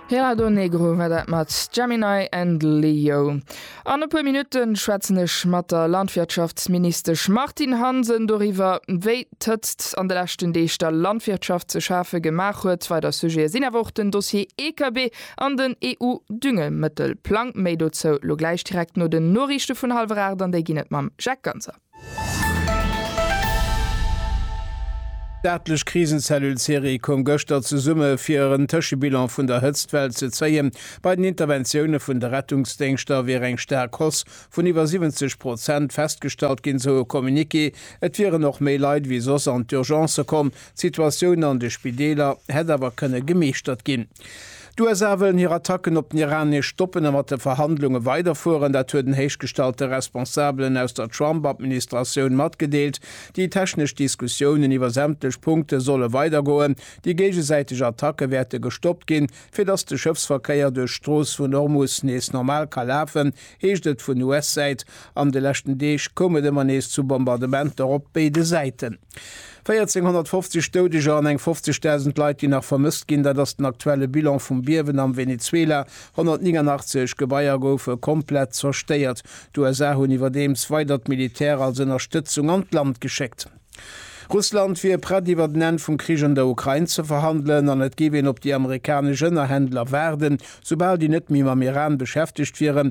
Hera do Negro war dat mat Gemini and Leo. An e puer Minutte schwätzen ech mat der Landwirtschaftsministesch Martine Hansen doriwwer, wéi d'Hëtzt an de leschten Deeg der Landwirtschaft ze schafe gemaach huet. Weider Sujete sinn awer och den Dossier EKB an den EU-Düngemëttelplang. Méi dozou elo gläich direkt no den Noriichte vun hallwer 8, an déi ginn et mam Jacques Ganser. D'staatlech Krisenzellule Ceres koum gëschter zesumme fir en Tëschebilan vun der Hëtztwell ze zéien. Bei den Interventioune vun de Rettungsdéngschter wier eng staark Hausse vun iwwer 70 Prozent festgestallt ginn, sou e Communiqué. Et wieren och méi Leit ewéi soss an d'Urgencë komm. D'Situatioun an de Spideeler hätt awer kënne gemeeschtert ginn. D'USA wëllen hir Attacken op den Iran nees stoppen a mat de Verhandlunge weiderfueren. Dat huet en héichgestallte Responsabelen aus der Trump-Administratioun matgedeelt. Déi technesch Diskussiounen iwwer sämtlech Punkte solle weidergoen. Déi géigesäiteg Attacke wäerte gestoppt ginn, fir datt de Schëffsverkéier duerch d'Strooss vun Hormus nees normal ka lafen, heescht et vun US-Säit. An de leschten Deeg koum et ëmmer nees zu Bombardementer op béide Säiten. 1450 Doudeger an eng 50.000 Leit, déi nach vermësst ginn, dat ass den aktuelle Bilan vum Biewen am Venezuela. 189 Gebaier goufe komplett zerstéiert. D'USA hunn iwwerdeems weider d'Militär als Ënnerstëtzung an d'Land geschéckt. Russland wier prett iwwert en Enn vum Krich an der Ukrain ze verhandelen an et géif een op déi amerikanesch Ënnerhändler waarden, soubal déi net méi mam Iran beschäftegt wieren.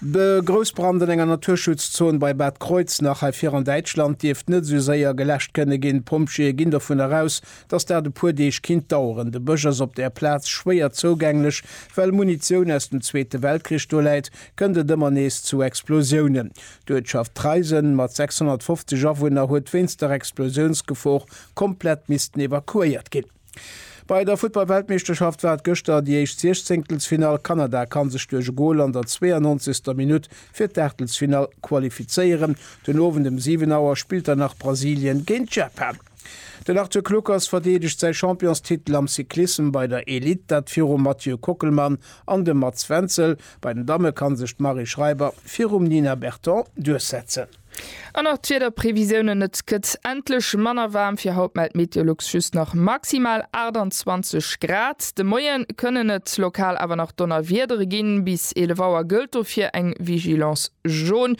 De Groussbrand an enger Naturschutzzon bei Bad Kreuznach hei vir an Däitschland dierft net esou séier geläscht kënne ginn. D'Pompjeeë ginn dovun eraus, datt dat e puer Deeg kinnt daueren. De Bësch ass op där Plaz schwéier zougänglech. Well Munitioun aus dem Zweete Weltkrich do läit, kënnt et ëmmer nees zu Explosiounen. D'Uertschaft Treisen mat 650 Awunner huet wéinst der Explosiounsgefor komplett missten evakuéiert ginn. Bei der Futtball-Weltmeeschterschaft war et gëschter déi éischt Siechzéngtelsfinall. Kanada kann sech duerch e Gol an der 92. Minutt fir d'Aachtelsfinall qualifizéieren. Den Owend ëm 7 Auer spillt dann nach Brasilien géint Japan. Den Arthur Kluckers verdeedegt säi Championstitel am Cyclissem bei der Elite, dat virum Mathieu Kockelmann an dem Mats Wenzel. Bei den Damme kann sech d'Marie Schreiber virum Nina Berton duerchsetzen. An och d'Wiederprevisiounen, Et gëtt endlech manner waarm. Fir haut mellt Meteolux just nach maximal 28 Grad. De Moie kënnen et lokal awer nach Donnerwiedere ginn. Bis 11 Auer gëllt dofir eng Vigilance jaune.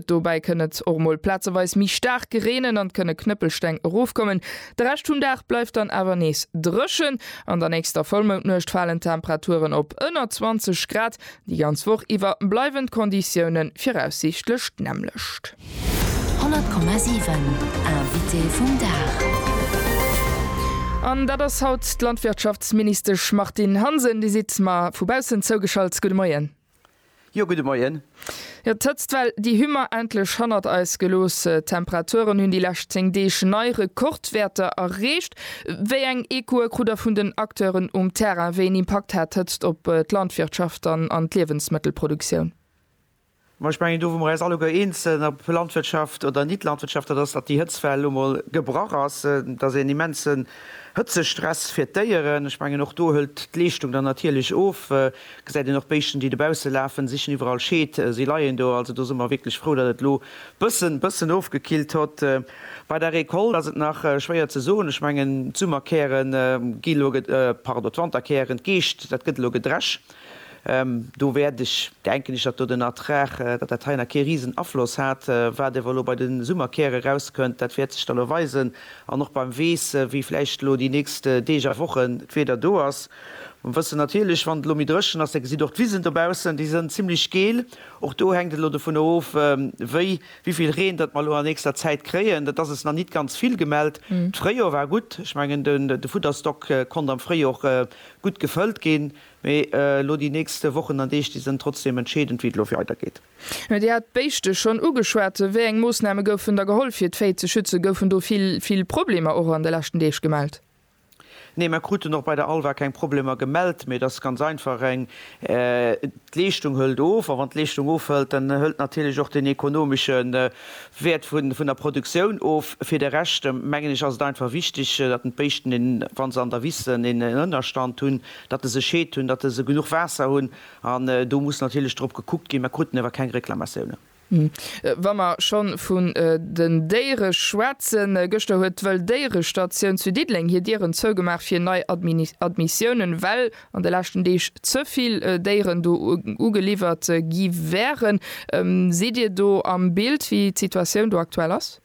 Dobäi kënn et och mol plazeweis méi staark gereenen an et kënne Knëppelsteng erofkommen. De Rescht vum Dag bleift dann awer nees dréchen. An der nächster Vollmoundnuecht falen d'Temperaturen op ënner 20 Grad. Déi ganz Woch iwwer bleiwen d'Konditioune viraussiichtlech d'nämmlecht. 100,7 Invité vum Dag. An dat ass haut d'Landwirtschaftsministesch Martine Hansen. Dir sidd mer vu baussen zougeschalt. Gudde Moien. Jo, gudde Moien. Jo, d'Hëtzt well, déi hu mer endlech hannert eis gelooss. D'Temperaturen hunn déi lescht 10 Deeg nei Rekordwäerter erreecht. Wéi eng Echoe krut Der vun den Acteuren um Terrain? Wéi een Impakt hat d'Hëtzt op d'Landwirtschaft an an d'Liewensmëttelproduktioun? Ma ech mengen, do wou mer eis alleguer eens sinn, ob Landwirtschaft oder Nit-Landwirtschaft, dat ass, datt déi Hëtztwell lo mol gebrach ass. Et ass een immensen Hëtzestress fir d'Déieren. Ech mengen, och do hëlt d'Leeschtung dann natierlech of. Gesäit een och Béischten déi dobausse lafen, sichen iwwerall Scheed, si leien do. Also do si mer wierklech frou, datt et elo bëssen bëssen ofgekillt hott. Bei der Récolte ass et nach schwéier ze soen. Ech mengen d'Summerkären gi elo, pardon d'Wanterkären, d'Geescht, dat gëtt elo gedresch. Do wäert ech, denken ech, datt do den Ertrag, datt dat hei nach kee riesen Afloss hat. Wat ewer elo bei de Summerkäre rauskënnt, dat wäert sech da lo weisen. An och beim Weess, wéi vläicht elo déi nächst Deeg a Wochen d'Wieder do ass. Mer wëssen natierlech, wann et elo méi dréchen ass, da gesitt och d'Wisen dobaussen, déi sënn zimlech geel. Och do hänkt et elo dovunner of, wéi, wéi vill Reen datt mer elo an nächster Zäit kréien. Dat ass es nach nit ganz vill gemellt. D'Fréijor war gutt. Ech mengen, den, de Futterstock konnt am Fréijor och gutt gefëllt ginn. Mee elo déi nächste Wochen an Deeg, déi sënn trotzdem entscheedend, wéi et elo weidergeet. Dir hat d'Béischte schonn ugeschwat. Wéi eng Moossname goufen da geholl, fir d'Véi ze schützen? Goufen do vill, vill Problemer och an de leschten Deeg gemellt? Nee, mer kruten och bei der Alva keng Problemer gemellt, mee et ass ganz einfach eng, d'Leeschtung hëlt of a wann d'Leeschtung ofhëlt, dann hëlt natierlech och den ekonomesche Wäert vun der Produktioun of. Fir de Rescht mengen ech ass et einfach wichteg, datt d'Béischten, wa se an der Wiss sënn, een Ënnerstand hunn, datt se sech heet hunn, datt se genuch Waasser hunn an do muss natierlech drop gekuckt ginn. Mer kruten awer keng Reklamatiounen. Wa mer schonn vun den Déiere schwätzen, Gëschter huet d'Wëlldéierestatioun zu Diddeleng hir Dieren zougemaach fir nei Admissiounen, well an de leschten Deeg ze vill Déieren do ugeliwwert gi wären. Sidd Dir do am Bild, wéi d'Situatioun do aktuell ass?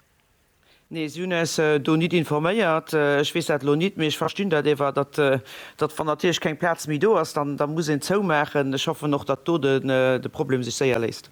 Nee, si hunn äis do nit informéiert. Ech weess dat elo nit, mee ech verstinn dat ewer, datt datt wann natierlech keng Plaz méi do ass, dann muss een zoumaachen. Ech hoffen och, datt do de Problem sech séier léist.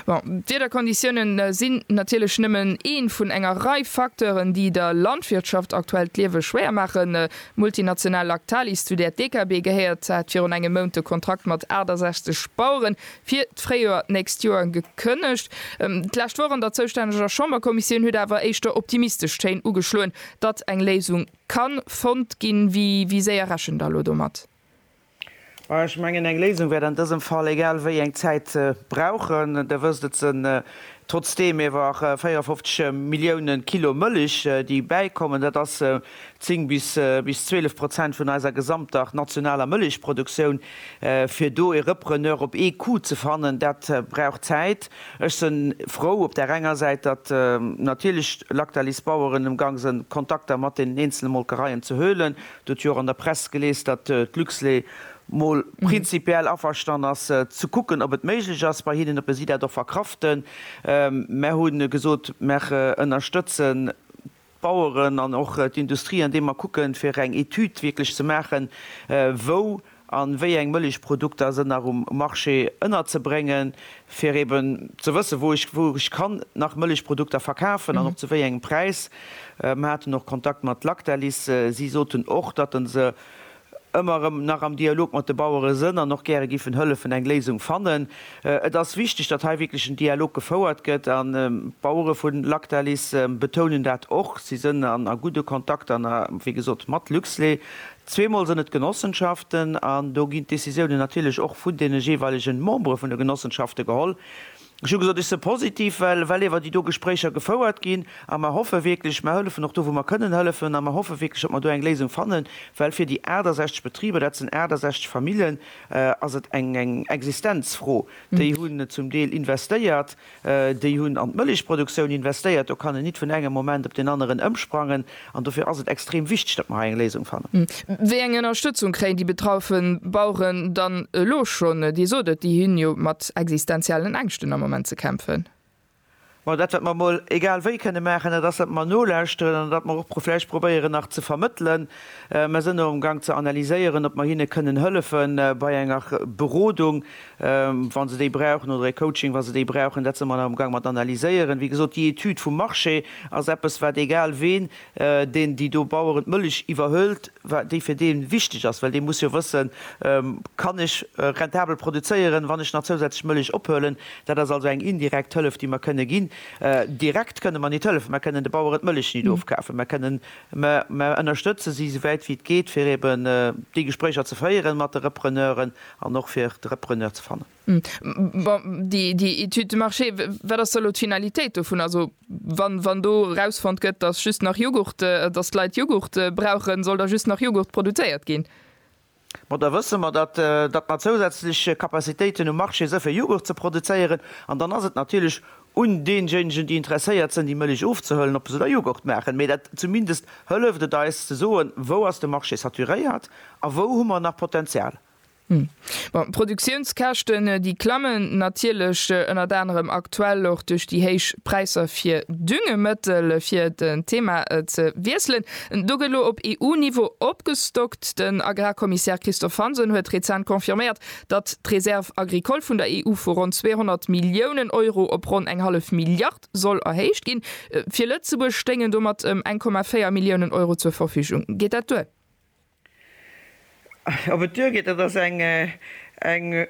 Bon, d'Wiederkonditiounen si natierlech nëmmen ee vun enger Rei Facteuren, déi der Landwirtschaft aktuell d'Liewe schwéier maachen. D'multinational Lactalis, zu där d'DKB gehéiert, hat virun engem Mount de Kontrakt mat 68 Baueren fir d'Fréijoer d'nächst Joer gekënnegt. D'lescht Woch an der zoustänneger Chamberkommissioun huet awer éischter optimistesch Téin ugeschloen, datt eng Léisung ka fonnt ginn. Wéi séier rechent Der elo domat? Majo, ech mengen, eng Léisung wäert an dësem Fall egal wéi eng Zäit brauchen. Der wësst, et sinn trotzdeem iewer 54 Milliounen Kilo Mëllech, déi bäikommen. Dat ass 10 bis 12 Prozent vun eiser gesamter nationaler Mëllechproduktioun, fir do e Repreneur op ee Coup ze fannen, dat brauch Zäit. Ech se frou op där enger Säit, datt natierlech Lactalis Baueren emgang sinn, Kontakter mat deenen eenzele Molkereien ze huelen. Dir hutt jo och an der Press gelies, datt d'Luxlait mol prinzipiell averstan ass, ze kucken, ob et méiglech ass bei hinnen, ob si dat och verkraften. Mer hu gesot, mer ënnerstëtzen D'Baueren an och d'Industrie, andeem mer kucken, fir eng Etüd wierklech ze maachen, wou a wéi eng Mëllechprodukter sënn nach um Marché ënnerzebréngen, fir eben ze wëssen, wou ech, wou ech kann nach Mëllechprodukter verkafen an och zu wéi engem Präis. Mer haten och Kontakt mat Lactalis. Si soten och, datt se ëmmer erëm nach am Dialog mat de Bauere sënn an och gäre giffen hëllefen eng Léisung fannen. Et ass wichteg, datt hei wierklech en Dialog gefouert gëtt an d'Bauere vu Lactalis betounen dat och. Si sënn a gudde Kontakt an wéi gesot mat Luxlait. Zweemol sënn et Genossenschaften an do ginn d'Decisiounen natierlech och vun deene jeeweilege Membere vun de Genossenschafte geholl. Ech hu gesot, ech se positiv, well well ewer déi do Gespréicher gefouert ginn. A mer hoffe wierklech, mer hëllefen och do, wou mer kënnen hëllefen, a mer hoffe wierklech, datt mer do eng Léisung fannen, well fir déi 68 Betriber, dat sinn 68 Famillen, ass et eng eng Existenzfro. Déi hunn zum Deel investéiert, déi hunn an d'Mëllechproduktioun investéiert. Do kann en nit vun engem Moment op deen aneren ëmsprangen. An dofir ass et extrem wichteg, datt mer hei eng Léisung fannen. Wéi eng Ënnerstëtzung kréien déi betraufe Baueren dann elo schonn? Dir sot et, déi hunn jo mat existenziellen Ängschten am Moment ze kämpfen. Bon, dat wat mer emol egal wéi kënne maachen, dat ass, datt mer nolauschteren an datt mer och vläicht probéieren nach ze vermëttelen. Mer sinn och amgang ze analyséieren, ob mer hinne kënnen hëllefe bei enger Berodung. wa se déi brauchen, oder e Coaching, wa se déi brauchen. Dat si mer nach am Gaang mat analyséieren. Wéi gesot, déi Etüd vum Marché ass eppes, wat egal ween, deen déi do Baueren d'Mëllech iwwerhëlt, wat déi fir dee wichteg ass. Well dee muss jo wëssen, Kann ech rentabel produzéieren, wann ech nach zousätzlech Mëllech ophuelen? Dat ass also eng indirekt Hëllef, déi mer kënne ginn. Direkt kënne mer nit hëllefen. Mer kënnen de Baueren d'Mëllech nit ofkafen. Mer kënnen, mer ënnerstëtze si, souwäit wéi et geet, fir eeben déi Gespréicher ze féieren mat de Repreneuren An och fir de Repreneur ze fannen. Bon, déi Étude de marché, wat ass da elo d'Finalitéit dovun? Also wann do erausfonnt gëtt, datt just nach Jughurt, datt d'Leit Jughurt brauchen, soll da just nach Jughurt produzéiert ginn? Bon, da wësse mer, datt mer zousätzlech Capacitéiten um Marché si fir Jughurt ze produzéieren. An dann ass et natierlech un deejéinegen déi interesséiert sënn déi Mëlich ofzehëllen ob se da Joghurt maachen, mee dat zumindest hëlleft et eis ze soen wou ass de Marché saturéiert a wou hu mer nach Potenzial. Bon, d'Produktiounskäschten déi klammen natierlech, ënnert anerem aktuell och duerch déi héich Präisser fir Düngemëttel, fir d'Thema ze wiesselen. Do gëtt elo op EU-Niveau opgestockt. Den Agrarkommissär Christophe Hansen huet rezent confirméiert, datt d'Reserve agricole vun der EU vu ronn 200 Milliounen Euro op ronn eng hallef Milliard soll erhéicht ginn. Fir Lëtzebuerg stéingen domat ëm 1,4 Milliounen Euro zur Verfügung. Geet dat duer? Ob et duergeet, dat ass eng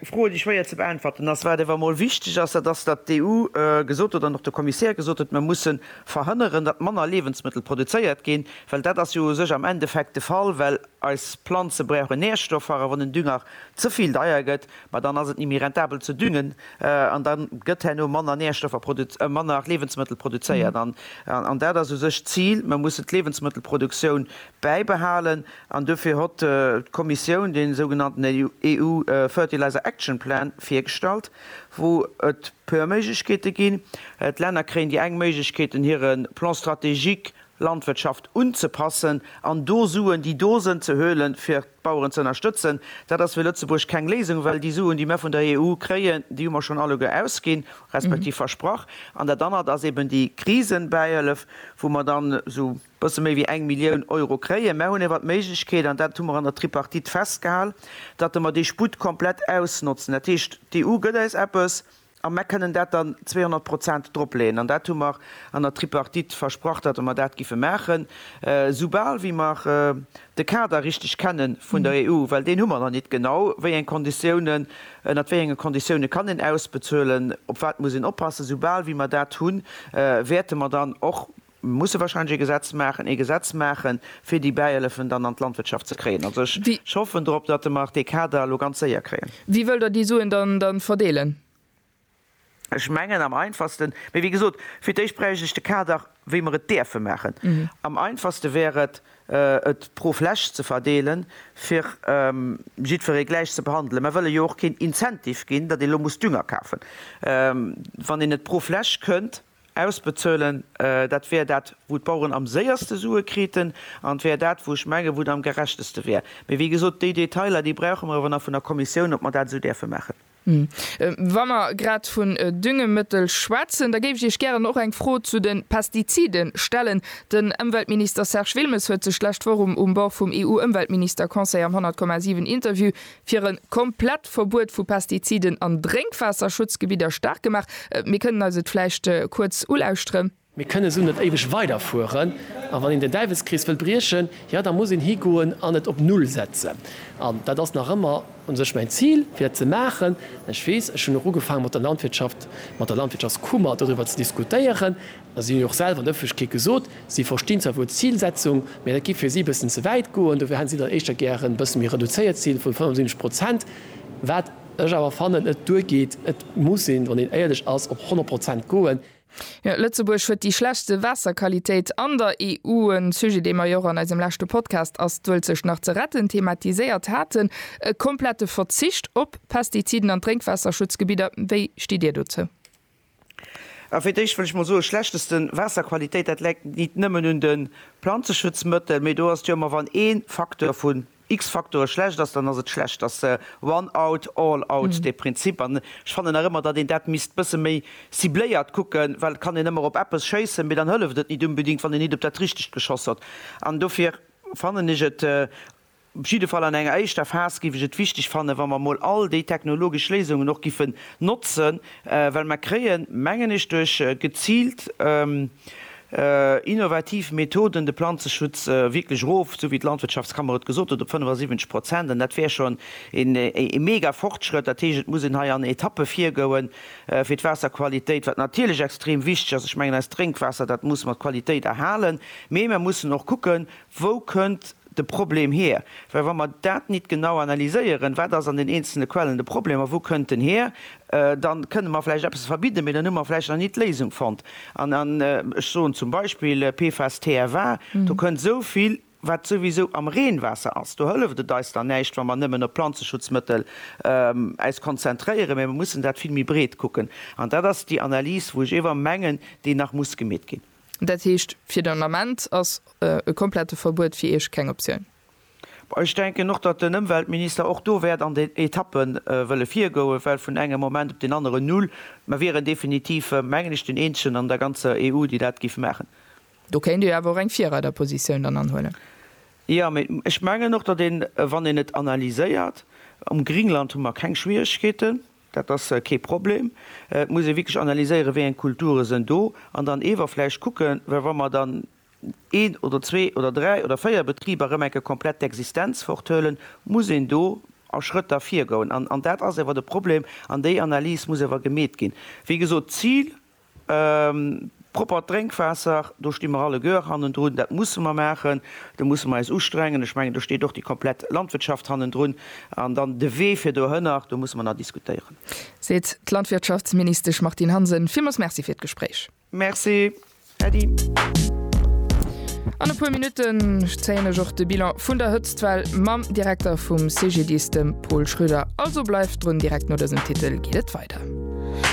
Fro, déi schwéier ze beäntwerten ass. Wat awer emol wichteg ass, dat ass, datt d'EU gesot huet an och de Kommissär gesot huet, Mir musse verhënneren, datt manner Liewensmëttel produzéiert ginn, well dat ass jo u sech am Endeffekt de Fall, well Eis Planze brauchen Nährstoffer a wann den Dünger ze vill deier gëtt, ma dann ass et ni méi rentabel ze düngen an dann gëtt herno manner Nährstoffer produz-, manner Liewensmëttel produzéiert an, an dat ass u sech d'Zil, mer mussen d'Liewensmëttelproduktioun bäibehalen an dofir hott d'Kommissioun dee sougenannten EU Fertilizer Action Plan virgestallt, wou et puer Méiglechkeete ginn. D'Länner kréien déi eng Méiglechkeet, den hire Plan stratégique Landwirtschaft unzepassen an do Suen, déi do sënn, ze hölen, fir d'Baueren ze ënnerstëtzen. Dat ass fir Lëtzebuerg keng Léisung, well déi Suen, déi mer vun der EU kréien, déi hu mer schonn alleguer ausginn, respektiv versprach. An dat anert ass eben déi Krisenbäihëllef, wou mer dann esou e bësse méi wéi eng Millioun Euro kréien. Mer hunn ewer d'Méiglechkeet, an dat hu mer an der Tripartite festgehal, datt mer dee Sputt komplett ausnotzen. Dat heescht, d'EU gëtt eis eppes, A mer kënnen dat dann 200 Prozent dropleeën. An dat hu mer an der Tripartite versprach, datt mer dat géife maachen, soubal wéi mer de Kader richteg kenne vun der EU, well deen hu mer nach nit genau, wéi eng Konditiounen, ënnert wéi enge Konditiounen kann een ausbezuelen, op wat muss een oppassen. Soubal wéi mer dat hunn, wäerte mer dann och Mir musse wahrscheinlech ee Gesetz maachen, ee Gesetz maachen, fir déi Bäielefen dann an d'Landwirtschaft ze kréien. Also ech Wie. hoffen drop, datt de mer dee Kader elo ganz séier kréien. Wie wëll der déi Suen dann, dann verdeelen? Ech mengen am einfachsten, mee wéi gesot, fir d'éischt bräicht ech de Kader, wéi mer et däerfe maachen. Am einfachste wär et, et pro Fläch ze verdeelen, fir jiddweree gläich ze behandelen. Mer wëlle jo och keen Incentive ginn, datt ee lo muss Dünger kafen, wann een et pro Fläch kënnt. Ausbezuelen, dat wär dat, wou d'Baueren am séierste Sue kriten, an et wär dat, wou ech menge wou et am gerechteste wär. Mee wéi gesot, déi Detailer, déi brauche mer awer nach vun der Kommissioun, ob mer dat esou däerfe maachen. Wa mer grad vun Düngemëttel schwätzen, da géif ech Iech gären och eng Fro zu de Pestizide stellen. Den Ëmweltminister Serge Wilmes huet sech d'lescht Woch um Bord vum EU-Ëmweltminister-Conseil am 100,7 Interview fir e komplett Verbuet vu Pestiziden an Drénkwaasserschutzgebidder staark gemaach. Mir kënnen eis et vläicht kuerz ulauschteren. Mir kënnen esou net éiweg weiderfueren. A wann een den Däiwelskrees wëll briechen, jo da muss een higoen an et op Null setzen. An dat ass nach ëmmer u sech mäin Zil, fir dat ze maachen. Ech weess, ech hunn och ugefaange mat der Landwirtschaft, mat der Landwirtschaftskummer doriwwer ze diskutéieren. a si hunn och selwer an der Ëffentlechkeet gesot, si verstinn zwar wuel d'Zilsetzung, mä dat géif fir si e bëssen ze wäit goen, dofir hätten si dann éischter gär e bësse méi reduzéiert Zil vun 75 Prozent, wat ech awer fannen net duergeet. Et muss ee, wann een éierlech ass, op 100 Prozent goen. Jo, Lëtzebuerg huet déi schlechtste Waasserqualitéit an der EU, e Sujet, dee mer jo och an eisem leschte Podcast Ass d'Uelzecht nach ze retten? thematiséiert haten. E komplette Verzicht op Pestiziden an d'Drénkwasserschutzgebidder, wéi stitt Dir dozou? A fir d'éischt wëll ech mol soe schlechteste Waasserqualitéit, dat läit nit nëmmen un de Planzeschutzmëttel, mee do ass et jo ëmmer, wann ee Facteur vun X-Factore schlecht ass, dann ass et schlecht. Dat ass one out, all out dee Prinzip. An ech fannen nach ëmmer, datt een dat misst bësse méi cibléiert kucken, well et kann een ëmmer op eppes schéissen, mee dann hëlleft et nit unbedingt, wann een nit op dat Richtegt geschoss huet. An dofir fannen ech et, Op jidde Fall an enger éischter Phas géif ech et wichteg fannen, wa mer emol all déi technologesch Léisungen och giffen notzen, well mer kréien, mengen ech, duerch geziilt innovativ Methoden de Planzeschutz wierklech erof, esou wéi d'Landwirtschaftskammer et gesot huet, op 75 Prozent. An dat wär schonn ee mega Fortschrëtt. Dat heescht, et muss een hei an Etappe virgoen fir d'Waasserqualitéit, wat natierlech extrem wichteg ass. Ech mengen, eist Drénkwaasser, dat muss mer d'Qualitéit erhalen, mee mer mussen och kucken, wou kënnt, de Problem hier? Well wa mer dat nit genau analyséieren, wat ass an den eenzelne Quellen de Problem a wou kënnt en hier, da kënne mer vläicht eppes verbidden, mee dann hu mer vläicht nach nit d'Léisung fonnt. An ech soen zum Beispill PFAS, TFA, do kënnt esou vill, wat souwisou am Reenwaasser ass. Do hëlleft et eis dann näischt, wa mer nëmmen op Planzeschutzmëttel äis konzentréieren, mee mer mussen dat vill méi breet kucken. An dat ass déi Analys, wou ech éwer mengen, déi nach muss gemeet ginn. Dat heescht, fir den Ament ass e komplette Verbuet fir Iech keng Optioun? Ech denken och, datt den Ëmweltminister och do wäert an den Etappe wëlle virgoen, well vun engem Moment op deen aneren null. Mer wieren definitiv, mengen ech, den Eenzegen an der ganzer EU, déi dat géif maachen. Do kéint Dir awer och eng Virreiderpositioun dann anhuelen. Jo, mee ech mengen och, datt een, wann een et analyséiert, um Greenland hu mer keng Schwieregkeeten. Dat ass kee Problem. Et muss ee wierklech analyséieren, wéi eng Kulture sen do, an dann eewer vläicht kucken, well wa mer dann een oder zwee oder dräi oder véier Betriber erëm eng Kéier komplett d'Existenz forthuelen, muss een do a Schrëtter virgoen. An dat ass ewer de Problem, an déi Analys muss ewer gemeet ginn. Wéi gesot, d'Zil Proppert Drénkwaasser, do sti mer alleguer hannendrun. Dat musse mer maachen, do musse mer eis ustrengen. Ech mengen, do steet och déi komplett Landwirtschaft hannendrun. An dann de Wee fir dohënner, do musse mer nach diskutéieren. Seet d'Landwirtschaftsministesch Martine Hansen. Villmools Merci fir d'Gespréich. Merci, Äddi. An e puer Minutten zéien ech och de Bilan vun der Hëtztwell mam Direkter vum CGDIS, dem Paul Schröder. Also bleift drun, direkt no dësem Titel geet et weider.